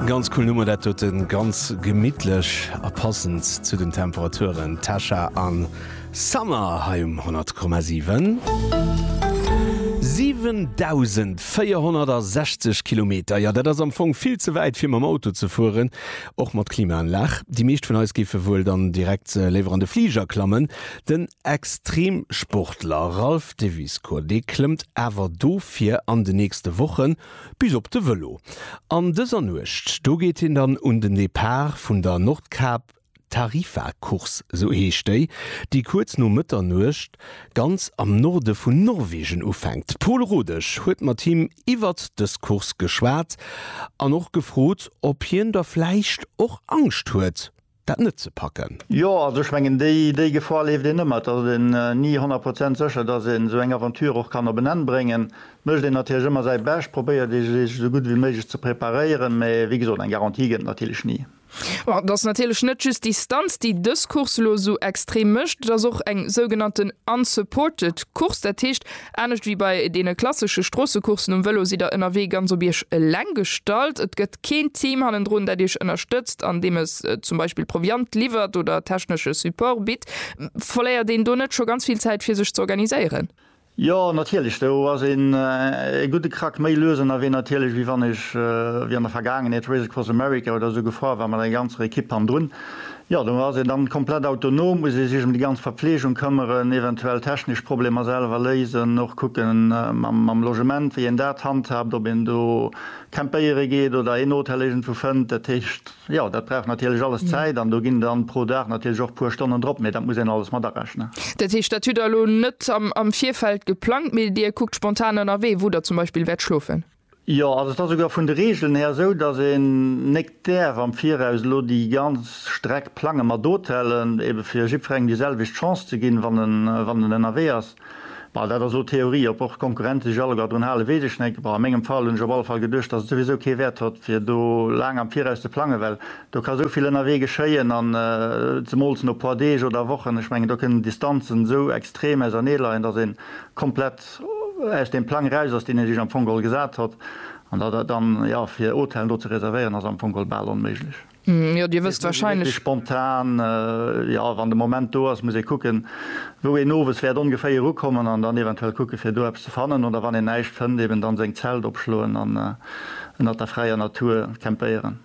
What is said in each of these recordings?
Ganz cool Nummer dat doten, ganz gemittlech a passend zu den Temperaturen, Tasha an Summer hei um 100,7. 7.460 Kilometer, jo dat ass am Fong vill ze wäit fir mam Auto ze fueren, och mat Klimaanlag. Déi meescht vun eis géife wuel dann direkt léiwer an de Fliger klammen. Den Extremsportler Ralph Deviscourt, dee klëmmt awer dofir an de nächste Wochen Bis op de Vëlo. An dëser Nuecht, do geet hien dann un den Depart vun der Nordkap Tarifa Course, sou heescht déi, déi kuerz no Mëtternuecht ganz am Norde vun Norwegen ufänkt. D'Pol Rodesch huet mat him iwwert dës Course geschwat an och gefrot, ob hien da vläicht och Angscht huet. dat net ze packen. Jo, also ech mengen, déi Gefor leeft een ëmmer. Et ass een ni honnert Prozent sécher, datt een esou eng Aventure och kann op en Enn bréngen. Et mécht een natierlech ëmmer säi Bescht, probéiert ee sech esou gutt ewéi méiglech ze preparéieren, mä wéi gesot, eng Garantie gëtt et natierlech ni. Bon, et ass natierlech net just d'Distanz, déi dës Course elo esou extrem mécht, et ass och eng sougenannten unsupported Course, dat heescht, Anescht wéi bei deene klassesche Stroossecoursen um Vëlo sidd der ënnerwee ganz op Iech eleng gestallt. Et gëtt keen Team hannendrun, dat Iech ënnerstëtzt, andeem e zum Beispill Proviant liwwert oder technesche Support bitt. Verléiert een do net scho ganz vill Zäit, fir sech ze organiséieren? Jo, natierlech. Do ass een e gudde Krack méi lues ënnerwee natierlech, wéi wann ech, wéi an der Vergaangenheet, Race Across America oder esou gefuer war mat enger ganzer Ekipp hannendrun. Jo, do ass een dann komplett autonom, muss ee sech em déi ganz Verpflegung këmmeren, eventuell technesch Problemer selwer léisen, och kucken mam Logement, wéi een dat handhaabt, ob een do campéiere geet oder een Hotel iergendwou fënnt. Dat heescht, jo, dat brauch natierlech alles Zäit an do ginn dann pro Dag natierlech och e puer Stonnen drop, mee dat muss een alles mat arechnen. Dat heescht, dat hutt Der elo net am Virfeld geplangt, mee Dir kuckt spontan ënnerwee, wou Der zum Beispill wäert schlofen? Jo, also et ass esouguer vun de Regeln här esou, dass een nékt däerf am Viraus elo déi ganz Streck plangen mat Hotellen, ebe fir jiddferengem déi selwecht Chance ze ginn, wann en, wann en ënnerwee ass. Bon, dat ass elo Theorie. Ob och d'Konkurrente sech alleguer drun halen, weess ech net. Bon, a mengem Fall hunn ech op alle Fall geduecht, dass et souwisou kee Wäert hott, fir do laang am Viraus ze plangen, well do ka esou vill ënnerwee geschéien an zemools no puer Deeg oder Wochen. Ech mengen, do kënnen d'Distanzen esou extrem ausernee leien, dass een komplett aus deem Plang eraus ass, deen Dir Iech am Fong geholl gesat hott. An dat ass dann, jo, fir Hotellen do ze reservéieren, ass am Fong geholl bal onméiglech. Jo, Dir wësst wahrscheinlech. Spontan, jo, wann de Moment do ass, muss ee kucken, wou een owes wäert ongeféier erukommen an dann eventuell kucken, fir do eppes ze fannen. Oder wann een näischt fënnt, eben dann seng Zelt opschloen an ënnert der fräier Natur campéieren.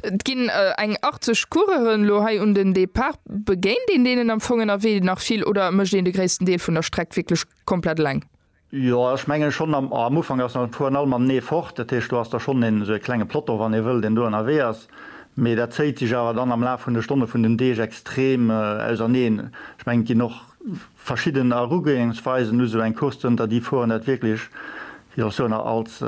Et ginn eng 80 Coureuren elo hei un den Depart. Begéint een deenen am Fong ënnerwee nach vill oder mécht een de gréissten Deel vun der Streck wierklech komplett eleng. Jo ech mengen schonn am am Ufank ass nach virun allem am Nee fort, dat heescht do ass da schonn een esou e klenge Plotto wann ee wëll deen do ënnerwee ass, mee dat zéiht sech awer dann am Laf vun de Stonne vun den Deeg extrem auserneen. Ech mengen et ginn och verschidden Erugoengsweisen, hu sou eng Course zënter déi fueren dat wierklech Jo, soen a als,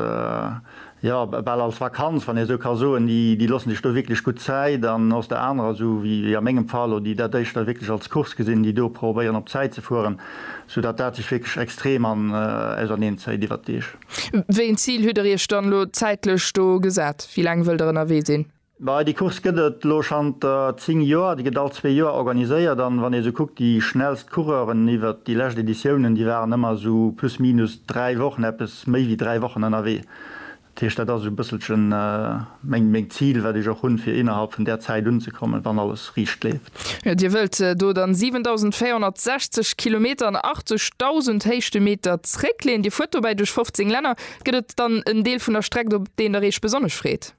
jo, bal als Vakanz, wann ee sou ka soen, déi, déi loossen sech do wierklech gutt Zäit. An aus der anerer, sou wéi, wéi a mengem Fall elo, déi dat éischter wierklech als Course gesinn, déi do probéieren op Zäit ze fueren, soudatt dat sech wierklech extrem an, auserneen zéit iwwert d'Deeg. Wéi een Zil hutt Der Iech dann elo zäitlech do gesat? Wéi laang wëllt Der ënnerwee sinn? Bei déi Course gëtt et elo schanter 10 Joer. Déi gëtt all zwee Joer organiséiert an wann ee sou kuckt, déi schnellst Coureuren iwwert déi lescht Editiounen, déi waren ëmmer esou plus minus dräi Wochen, eppes méi wéi dräi Wochen ënnerwee. Dat heescht, dat ass esou e bësselchen meng, meng Zil, wat ech och hunn, fir innerhalb vun där Zäit unzekommen, wann alles riicht leeft. Jo, Dir wëllt do dann 7.460 Kilometer an 80.000 Héichtemeter zréckleeën. Dir fuert dobäi duerch 15 Länner. Gëtt et dann en Deel vun der Streck, op deen Der Iech besonnesch freet?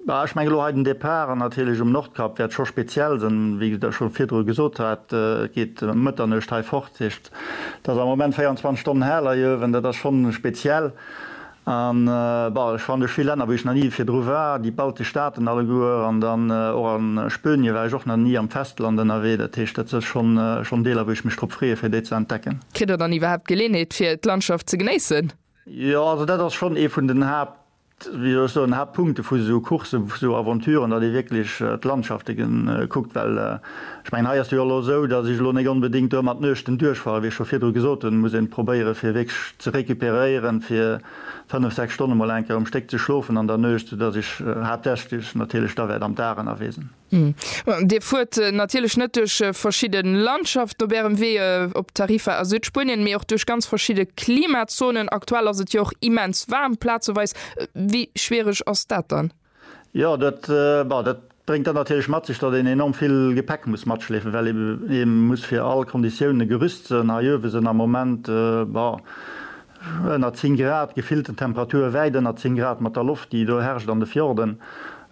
Mä ech mengen elo hei den Départ natierlech um Nordkap wäert scho speziell sinn, wéi ech dat scho virdru gesot hat. Et geet ëm Mëtternuecht hei fort, dat heescht, et ass am Moment 24 Stonnen hell hei uewen, dat ass schonn speziell. An, bon, ech waren duerch vill Länner, wou ech nach ni virdru war, déi baltesch Staaten alleguer, an dann och a Spönie war ech och nach ni am Festland ënnerwee. Dat heescht, dat si schonn, schonn Deeler, wou ech mech drop freeë fir déi ze entdecken. Kritt Der dann iwwerhaapt d'Geleeënheet fir d'Landschaft ze genéissen? Jo, also dat ass schonn ee vun den Haapt, wéi soll ech soen, Haaptpunkte vu sou Coursse, vu sou Aventuren, datt ee wierklech d'Landschafte kuckt. Well ech mengen, hei ass jo elo esou, datt ech elo net onbedéngt do ëmmer d'Nuechten duerchfahre, wéi ech scho virdru gesot hunn, muss ee probéiere fir wierklech ze recuperéieren, fir fënnef, sechs Stonne mol eng Kéier um Stéck ze schlofen an der Nuecht, soudatt ech haaptsächlech natierlech da wäert am Dag ënnerwee sinn. Dir fuert natierlech net duerch verschidde Landschaften op Ärem Wee op Tarifa a Südspuenien, mee och duerch ganz verschidde Klimazonen. Aktuell ass et jo och immens waarm plazeweis. Wéi schwiereg ass dat dann? Jo, dat bréngt dann natierlech mat sech, datt een enorm vill Gepäck muss matschleefen, well ee muss fir all Konditiounen gerüst sinn. Hei uewe sinn am Moment Ënner 10 Grad, gefillten Temperature wäit ënner 10 Grad mat der Loft, déi do herrscht an de Fjorden.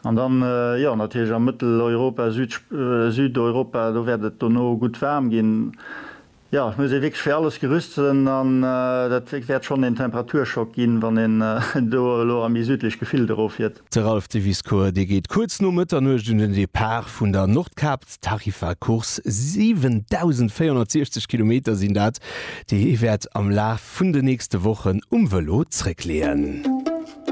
An dann, jo, natierlech a Mëtteleuropa, Südeuropa, do wäert et dono gutt waarm ginn. Jo, et muss ee wierklech fir alles gerüst sinn an dat wäert schonn een Temperaturschock ginn, wann een do elo a méi südlech Gefillt eroffiert. De Ralph Diviscourt, dee geet kuerz no Mëtternuecht un den Depart vun der Nordkap. D'Tarifa-Course, 7.460 Kilometer sinn dat, déi hie wäert am Laf vun de nächste Wochen um Vëlo zréckleeën.